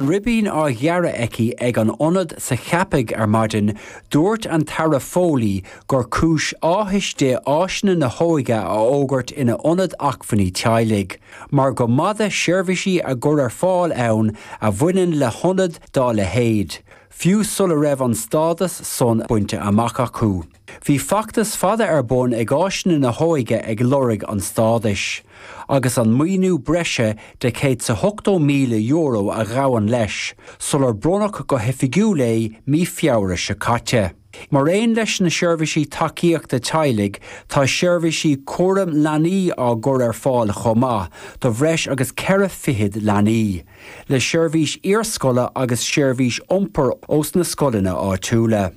Ribín á ghearradh aici ag an Ionad sa Cheapaigh ar maidin, dúirt an tAire Foley gur cúis áthais di áiseanna na hóige a fhógairt ina Ionad Acmhainní Teaghlaigh, mar go mb'fhada seirbhísí á gcur ar fáil ann a bhaineann le hionad dá leithéid, fiú sula raibh an stádas son bainte amach acu. Bhí feachtas fada ar bun ag áiseanna na hóige ag lorg an stádais, agus an maoiniú breise de €180,000 a ghabhann leis, sular bronnadh go hoifigiúil é mí Feabhra seo caite. Mar aon leis na seirbhísí tacaíochta teaghlaigh, tá seirbhísí cúraim leanaí á gcur ar fáil chomh maith do bhreis agus ceithre fichid leanaí, le seirbhís iarscoile agus seirbhís iompair ós na scoileanna áitiúla.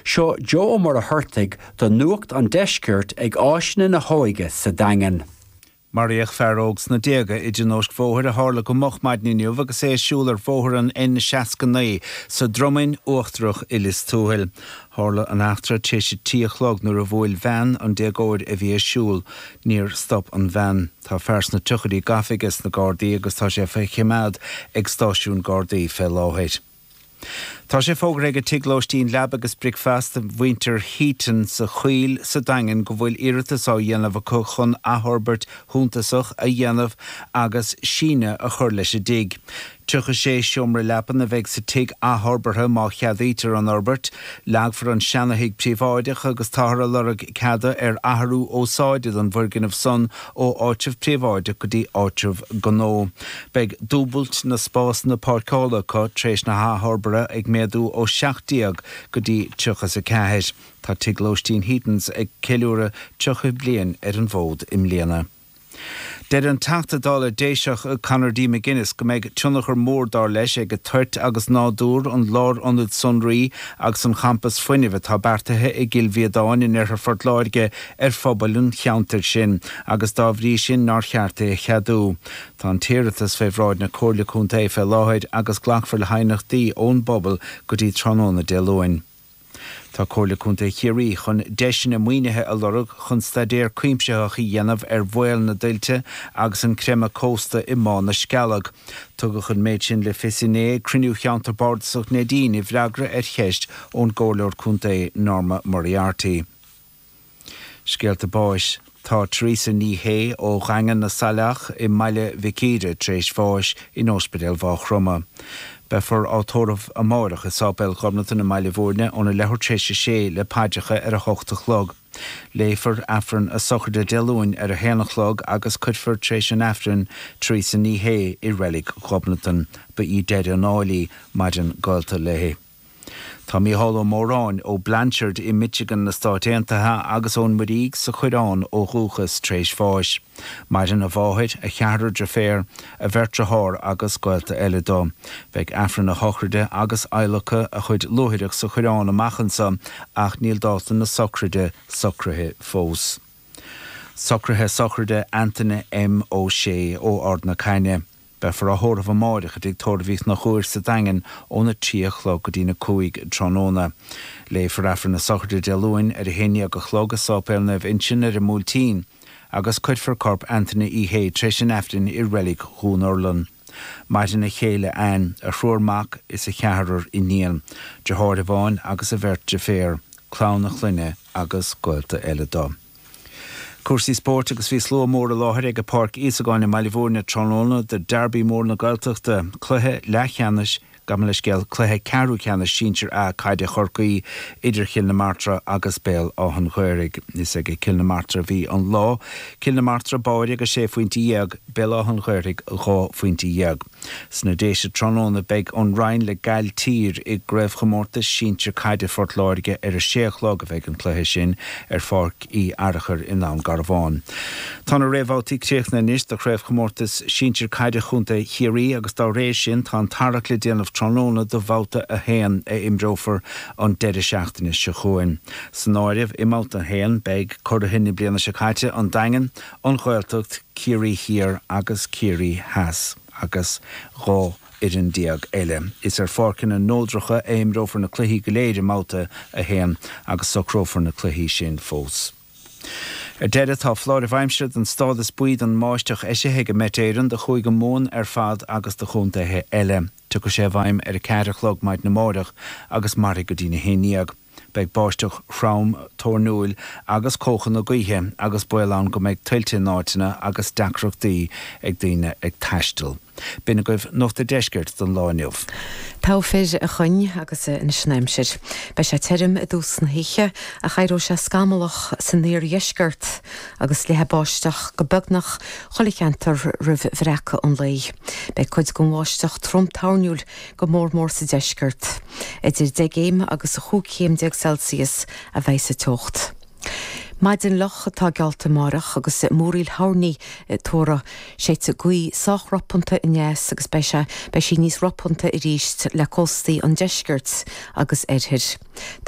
Seo Joe Ó Muircheartaigh do Nuacht an Deisceirt ag Áiseanna na hÓige sa Daingean. Maraíodh fear óg sna déaga i dtionóisc bhóthair a tharla go moch maidin inniu agus é ag siúl ar bhóthar an N69 sa Dromainn Uachtarach i Lios Tuathail. Tharla an eachtra tar éis a trí a chlog nuair a bhuail veain an déagóir a bhí ag siúl. Níor stop an veain. Tá fear sna tríochaidí gafa aige sna Gardaí agus tá sé faoi choimeád ag stáisiún Gardaí fé láthair. Tá sé fógartha ag an tigh lóistín Leaba agus Bricfeasta mhuintir Heaton sa Choill sa Daingean go bhfuil iarratas á dhéanamh acu chun athfhorbairt shuntasach a dhéanamh agus síneadh a chur leis an dtigh. Tríocha sé seomra leapan a bheidh sa tigh athfhorbartha má cheadaítear an fhorbairt. Leagfar an seanathigh príobháideach agus táthar ag lorg ceada ar athrú úsáide don bhfoirgneamh san ó áitreabh príobháideach go dtí áitreabh gnó. Beidh dúbailt na spásanna páirceála acu tar éis na hathfhorbartha, ag méadú ó seacht déag go dtí tríocha is a ceathair. Tá tigh lóistín Heatons ag ceiliúradh tríocha bliain ar an bhfód i mbliana. Deir an Teachta Dála Déiseach Conor D. McGuinness go mbeidh tionchar mór dar leis ag toirt agus nádúr an lárionaid sonraí agus an champas fuinnimh atá beartaithe i gCill Mhíodáin in Oirthear Phort Láirge ar phobal an cheantair sin agus dá bhrí sin nár cheart é a cheadú. Tá an t-iarratas fé bhráid na Comhairle Contae fé láthair agus glacfar le haighneachtaí ón bpobal go dtí tráthnóna Dé Luain. Tá Comhairle Contae Chiarraí chun deiseanna maoinithe a lorg chun staidéar cuimsitheach a dhéanamh ar bhaol na dtuilte agus an creimeadh cósta i mBá na Scealg. Tugadh an méid sin le fios inné ag cruinniú Cheantar Bardasach Neidín i bhfreagra ar cheist ón gComhairleoir Contae Norma Moriarty. Scéalta báis Tá Theresa Ní Shé ó Dhaingean na Saileach i mBaile Mhic Íre tar éis bháis in óspidéal Mhá Chromtha. Beifear á tórramh amáireach i Sáipéal Ghobnatan i mBaile Mhúirne óna leathuair tar éis a sé le paidreacha ar a hocht a chlog. Léifear Aifreann a sochraide Dé Luain ar a haon a chlog agus cuirfear tar éis an Aifrinn Theresa Ní Shé i Reilig Ghobnatan. Ba í deireadh an áil í. Maireann gaolta léi. Tá Mícheál Ó Móráin, ó Blanchard i Michigan na Stáit Aontaithe agus ón Muirígh sa Choireán ó dhúchas, tréis bháis. Maireann a mháthair, a cheathrar deirféar, a bheirt dhearthár agus gaolta eile dó. Beidh Aifreann a shochraide agus adhlacadh a chuid luaithreach sa Choireán amach anso ach níl dáta na sochraide socraithe fós. Socraithe sochraide Antaine M. Ó Sé ó Ard na Caithne. Beifear á thórramh amáireach i dtigh tórraimh Uí Chonchúir sa Daingean óna trí a chlog go dtína cúig tráthnóna. Léifear Aifreann na Sochraide Dé Luain ar a haon déag a chlog i Sáipéal Naomh Uinseann ar an mBuailtín agus cuirfear corp Anthony Uí Shé tar éis an Aifrinn i reilig Dhún Urlann. Maireann a chéile Anne, a thriúr mac is a cheathrar iníon, deartháir amháin agus a bheirt deirféar, clann a chlainne agus gaolta eile dó. Cúrsaí spóirt agus bhí slua mór i láthair ag Páirc Íosagáin i mBaile Bhúirne tráthnóna do Derby mór na Gaeltachta, cluiche leathcheannais, gabh mo leithscéal, cluiche ceathrú ceannais sinsir A caide Chorcaí idir Chill na Martra agus Béal Átha'n Ghaorthaidh. Is ag Cill na Martra a bhí an lá, Cill na Martra, báire, agus sé phointe dhéag, Béal Átha'n Ghaorthaidh, dhá phointe dhéag. Sna Déise tráthnóna beidh an Rinn le Gailltír i gCraobhchomórtas Sinsear Caide Phort Láirge ar a sé a chlog a bheidh an cluiche sin ar Pháirc Uí Fhearchair i nDún Garbhán. Tá na réamhbhabhtaí críochnaithe anois do Chraobhchomórtas Sinsear Caide Chontae Chiarraí agus dá réir sin tá an tarrac le déanamh tráthnóna do bhabhta a haon a imreofar an deireadh seachtaine seo chugainn. San áireamh i mbabhta a haon beidh curaithe na bliana seo caite, An Daingean, an Ghaeltacht, Ciarraí Thiar agus Ciarraí Theas, agus dhá fhoireann déag eile. Is ar pháirceanna neodracha a imreofar na cluichí go léir i mBabhta a haon agus socrófar na cluichí sin fós. Ar deireadh, tá foláireamh aimsire den stádas buí don mbáisteach eisithe ag Met Éireann do Chúige Mumhan ar fad agus do chontaetha eile. Tiocfaidh sé i bhfeidhm ar a ceathair a chlog maidin amáireach agus mairfidh go dtína haon déag. Beidh báisteach throm, toirniúil agus cóchanna gaoithe agus baol ann go mbeidh tuilte in áiteanna agus deacrachtaí ag daoine ag taisteal. B'in agaibh Nuacht a' Deiscirt don lá inniu. Go raibh maith agat a Choinn agus anois an aimsir. Beidh sé tirim i dtús na hoíche ach éireoidh sé scamallach san iardheisceart agus leathfaidh báisteach go beagnach chuile cheantar roimh bhreacadh an lae. Beidh cuid den mbáisteach trom toirniúil go mór mór sa deisceart. Idir deich gcéim agus a chúig chéim déag Celsius a bheidh sa teocht. Maidin fhliuch atá geallta amárach agus múraíl toirní á dtuaradh. Séidfidh gaoth sách ropanta aneas agus beidh sé, beidh sí níos ropanta arís le cóstaí an deiscirt agus an oirthir.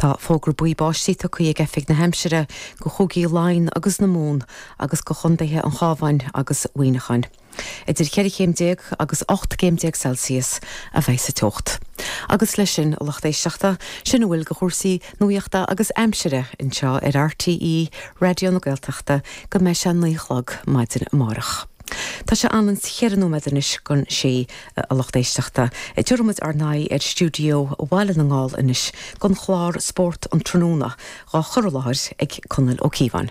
Tá fógra buí báistí tugtha ag Oifig na hAimsire do Chúigí Laighean agus na Mumhan agus do Chondaetha an Chábháin agus Mhuineacháin. Idir cheithre chéim déag agus ocht gcéim déag Celsius a bheidh sa teocht. Agus leis sin, a lucht éisteachta, sin a bhfuil de chúrsaí nuaíochta agus aimsire anseo ar RTÉ Raidió na Gaeltachta go mbeidh sé a naoi a chlog maidin amárach. Tá sé anonn's cheithre nóiméad anois don sé, a lucht éisteachta. Díreoidh muid ár n-aghaidh ar stiúideo Bhaile na nGall anois don chlár Spórt an Tráthnóna, dhá chur i láthair ag Conall Ó Cíobháin.